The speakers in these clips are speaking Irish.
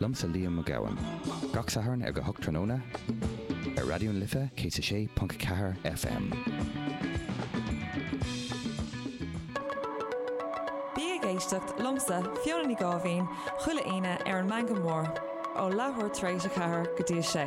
Liomsa Liam Mac Gabhann. Gach Satharn ag a hocht tráthnóna ar Raidió na Life 106.4 FM. Bí ag éisteacht liomsa, Fiona Ní Gáibhín, chuile Aoine ar an Meangadh Mór, ó leathuair tar éis a ceathair go dtí a sé.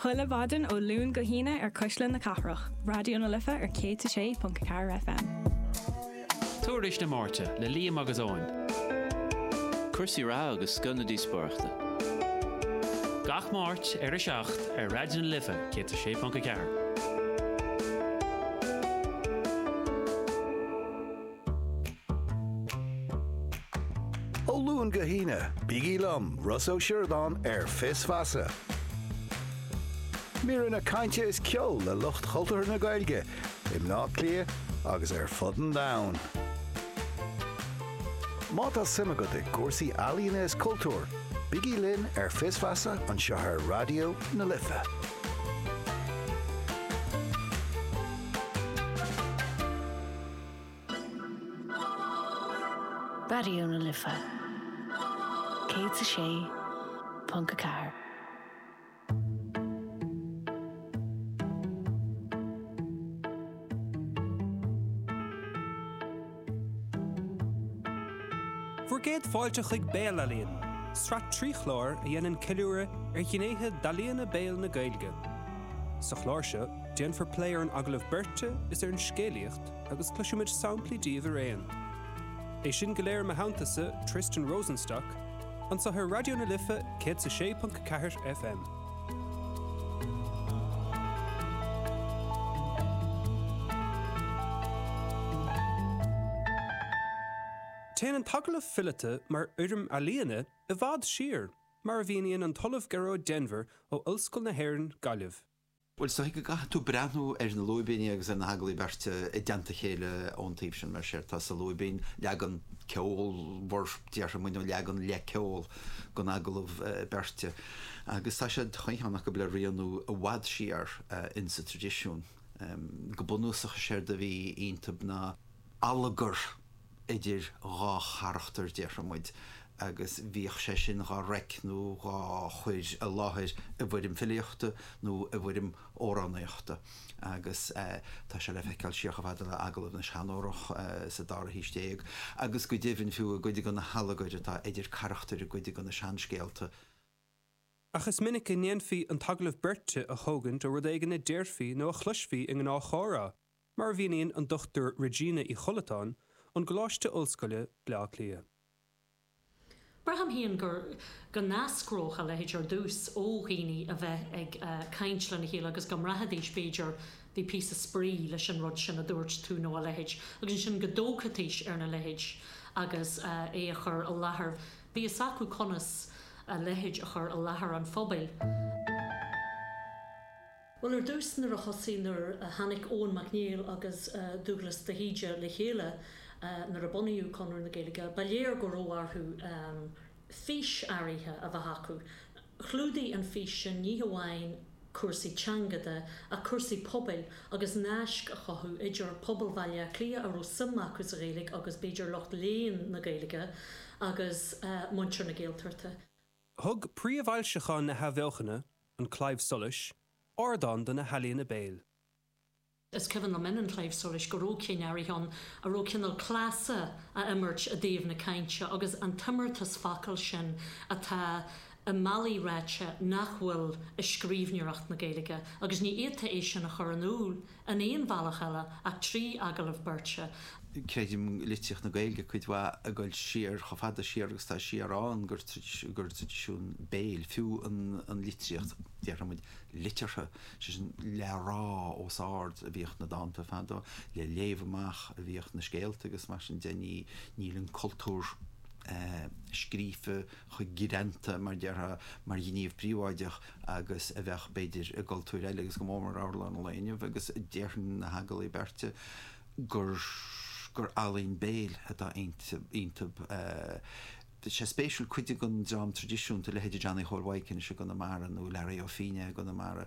Chuile mhaidin ó Luan go hAoine ar Cuisle na Cathrach, Raidió na Life ar 106.4 FM. Tuairisc na Máirte le Liam agus Eoin. Cúrsaí reatha agus scoth na díospóireachta. Gach Máirt ar 7 ar Raidió na Life 106.4. Ó Luan go hAoine, bígí liom, Ross Ó Sioradáin, ar Fios Feasa. Míreanna cainte is ceol le lucht cultúrtha na Gaeilge i mBleá Cliath agus ar fud an domhain. Má tá suim agat i gcúrsaí ealaíona is cultúir, bígí linn ar Fios Feasa anseo ar Raidió na Life. Raidió na Life 106.4. Fuar gcéad fáilte chuig Béalealaíon, sraith trí chlár a dhéanann ceiliúradh ar ghnéithe d'ealaíona béil na Gaeilge. Sa chlár seo. Déanfar plé ar an agallamh beirte is ar an scéalaíocht agus cloisfimid samplaí díobh araon. É sin go léir i mo theanntasa, Tristan Rosenstock, anseo ar Raidió na Life 106.4 FM. Téann an t-agallamh fileata mar fhoirm ealaíne i bhfad siar, mar a mhíníonn an tOllamh Gearóid Denvir ó Ollscoil na hÉireann, Gaillimh. Bhuel, is dóigh go gcaithfidh tú breathnú ar na lúibíní agus ar na hagallaimh bheirte i dteannta a chéile ón taobh sin, mar séard atá sa lúibín, leagan ceolmhar, déarfaidh muid, nó leagan le ceol den agallamh beirte. Agus tá siad, chuile cheann acu, le rianú i bhfad siar insa traidisiún. Go bunúsach, is éard a bhí iontab ná. allagar idir dhá charachtar, déarfaidh muid, agus bhíodh sé sin dhá reic nó dhá chur i láthair i bhfoirm filíochta nó i bhfoirm amhránaíochta agus tá sé le feiceáil siar chomh fada le Agallamh na Seanórach sa dara haois déag agus go deimhin fiú i gcuid de na hallagair atá idir carachtair i gcuid de na seanscéalta. Ach is minic a dhéanfaí an t-agallamh beirte a thógaint ó rud éigin a déarfaí nó a chloisfí i ngnáthchomhrá. Mar a mhíníonn an Dr Regina Uí Chollatáin ón gColáiste Ollscoile, Baile Átha Cliath. Braithim féin go n-eascródh a leithéid ar dtús ó dhaoine a bheith ag caint lena chéile agus go mbraithfidís, b'fhéidir, bhí píosa spraoi leis an rud sin a dúirt tú nó a leithéid, agus ansin go dtógfaidís ar na leithéid agus é a chur i láthair. Bhí fhios acu conas a leithéid a chur i láthair an phobail. Bhuel, ar dtús, nuair a thosaigh, nuair a tháinig Eoin Mac Néill agus Dúglas de hÍde le chéile, nuair a bunaíodh Conradh na Gaeilge, ba léir go raibh orthu fís áirithe a bheith acu. Chlúdaigh an fís sin ní hamháin cúrsaí teanga de ach cúrsaí pobail agus naisc a chothú idir pobal Bhaile Átha Cliath a raibh suim acu sa Ghaeilge agus, b'fhéidir, lucht léinn na Gaeilge agus muintir na Gaeltachta. Thug príomhfhoilseacháin na hAthbheochana, An Claidheamh Soluis, ardán do na healaíona béil. Is cuimhin liom in An Claidheamh Soluis go raibh cinn áirithe ann a raibh cineál cleasa a imirt i dtaobh na cainte agus an t-imeartas focal sin atá i mbealaí ráite nach bhfuil i scríbhneoireacht na Gaeilge agus ní fhéadfá é sin a chur in iúl in aon bhealach eile ach trí agallamh beirte. Creidim i litríocht na Gaeilge cuid mhaith ag dul siar, chomh fada siar agus atá siad ann, gur traidisiún béil, fiú an litríocht, déarfadh muid, liteartha, sé sin le rá os ard, a bhíodh na dánta fadó, le léamh amach a bhíodh na scéalta agus mar sin de. Ní, níl an cultúr scríofa chomh greanta, mar déarfá, mar ghníomh príobháideach. agus a bheadh, b'fhéidir, i gcultúir eile agus go mór mór i amhráin an lae inniu agus déarfainn na hagallaimh beirte gur ealaín béil atá iontu. Tá sé spéisiúil, cuid den dream traidisiúnta, leithéidí Johnny Chóil Mhaidhc anois i gConamara nó Learaí Ó Fínneadha i gConamara,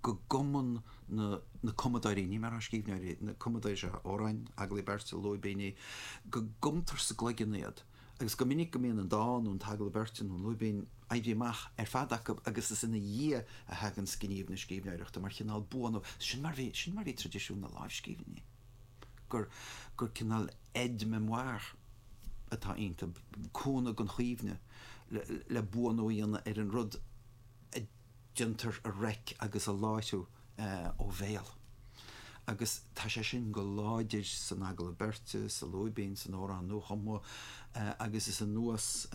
go gcumann na cumadóirí, ní déarfaidh mé scríbhneoirí, na cumadóirí seo amhráin, agallaimh beirte, lúibíní, go gcumtar sa gcloigeann iad. agus go minic go mbíonn an dán nó an t-agallamh beirte nó an lúibín aibí amach ar fad acu agus is ina dhiaidh a thaganns gníomh na scríbhneoireachta mar chineál buanú. Sin mar bhí, sin mar bhí traidisiún na lámhscríbhinní, gur, gur cineál aide memoire atá iontu, cúnamh don chuimhne le buanú a dhéanamh ar an rud a. déantar a reic agus a láithriú ó bhéal agus tá sé sin go láidir san Agallamh Beirte, sa Lúibín, san Amhrán Nuachumtha agus is anuas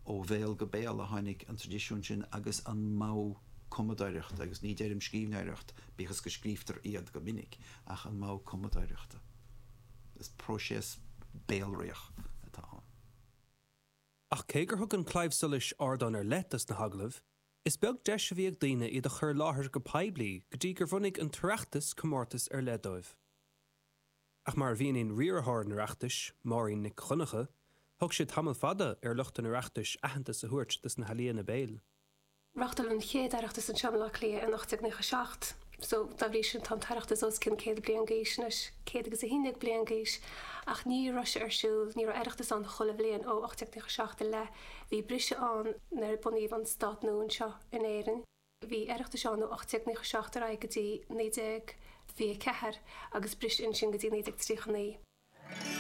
ó bhéal go béal a tháinig an traidisiún sin agus an modh cumadóireachta, agus ní deirim scríbhneoireacht, bíodh is go scríobhtar iad go minic, ach an modh cumadóireachta. Is próiseas béalraíoch atá ann. Ach cé gur thug an Claidheamh Soluis ardán ar leith dos na hagallaimh, Is beag deis a bhí ag daoine iad a chur i láthair go poiblí go dtí gur bhunaigh an tOireachtas comórtas ar leith dóibh. Ach mar a mhíníonn riarthóir an Oireachtais, Máirín Nic Dhonncha, thóg sé tamall fada ar lucht an Oireachtais aitheantas a thabhairt dos na healaíona béil. Reáchtáladh an chéad Oireachtas anseo i mBaile Átha Cliath in 1897 so dá bhrí sin tá an tOireachtas os cionn céad bliain d'aois anois, céad agus a haon déag bliain d'aois, ach ní raibh sé ar siúl, ní raibh Oireachtas ann chuile bhliain ó 1897 i leith. Bhí briseadh ann nuair a bunaíodh an stát nua anseo in Éirinn. Bhí Oireachtais ann ó 1897 ar aghaidh go dtí 1924 agus bris ansin go dtí 1939.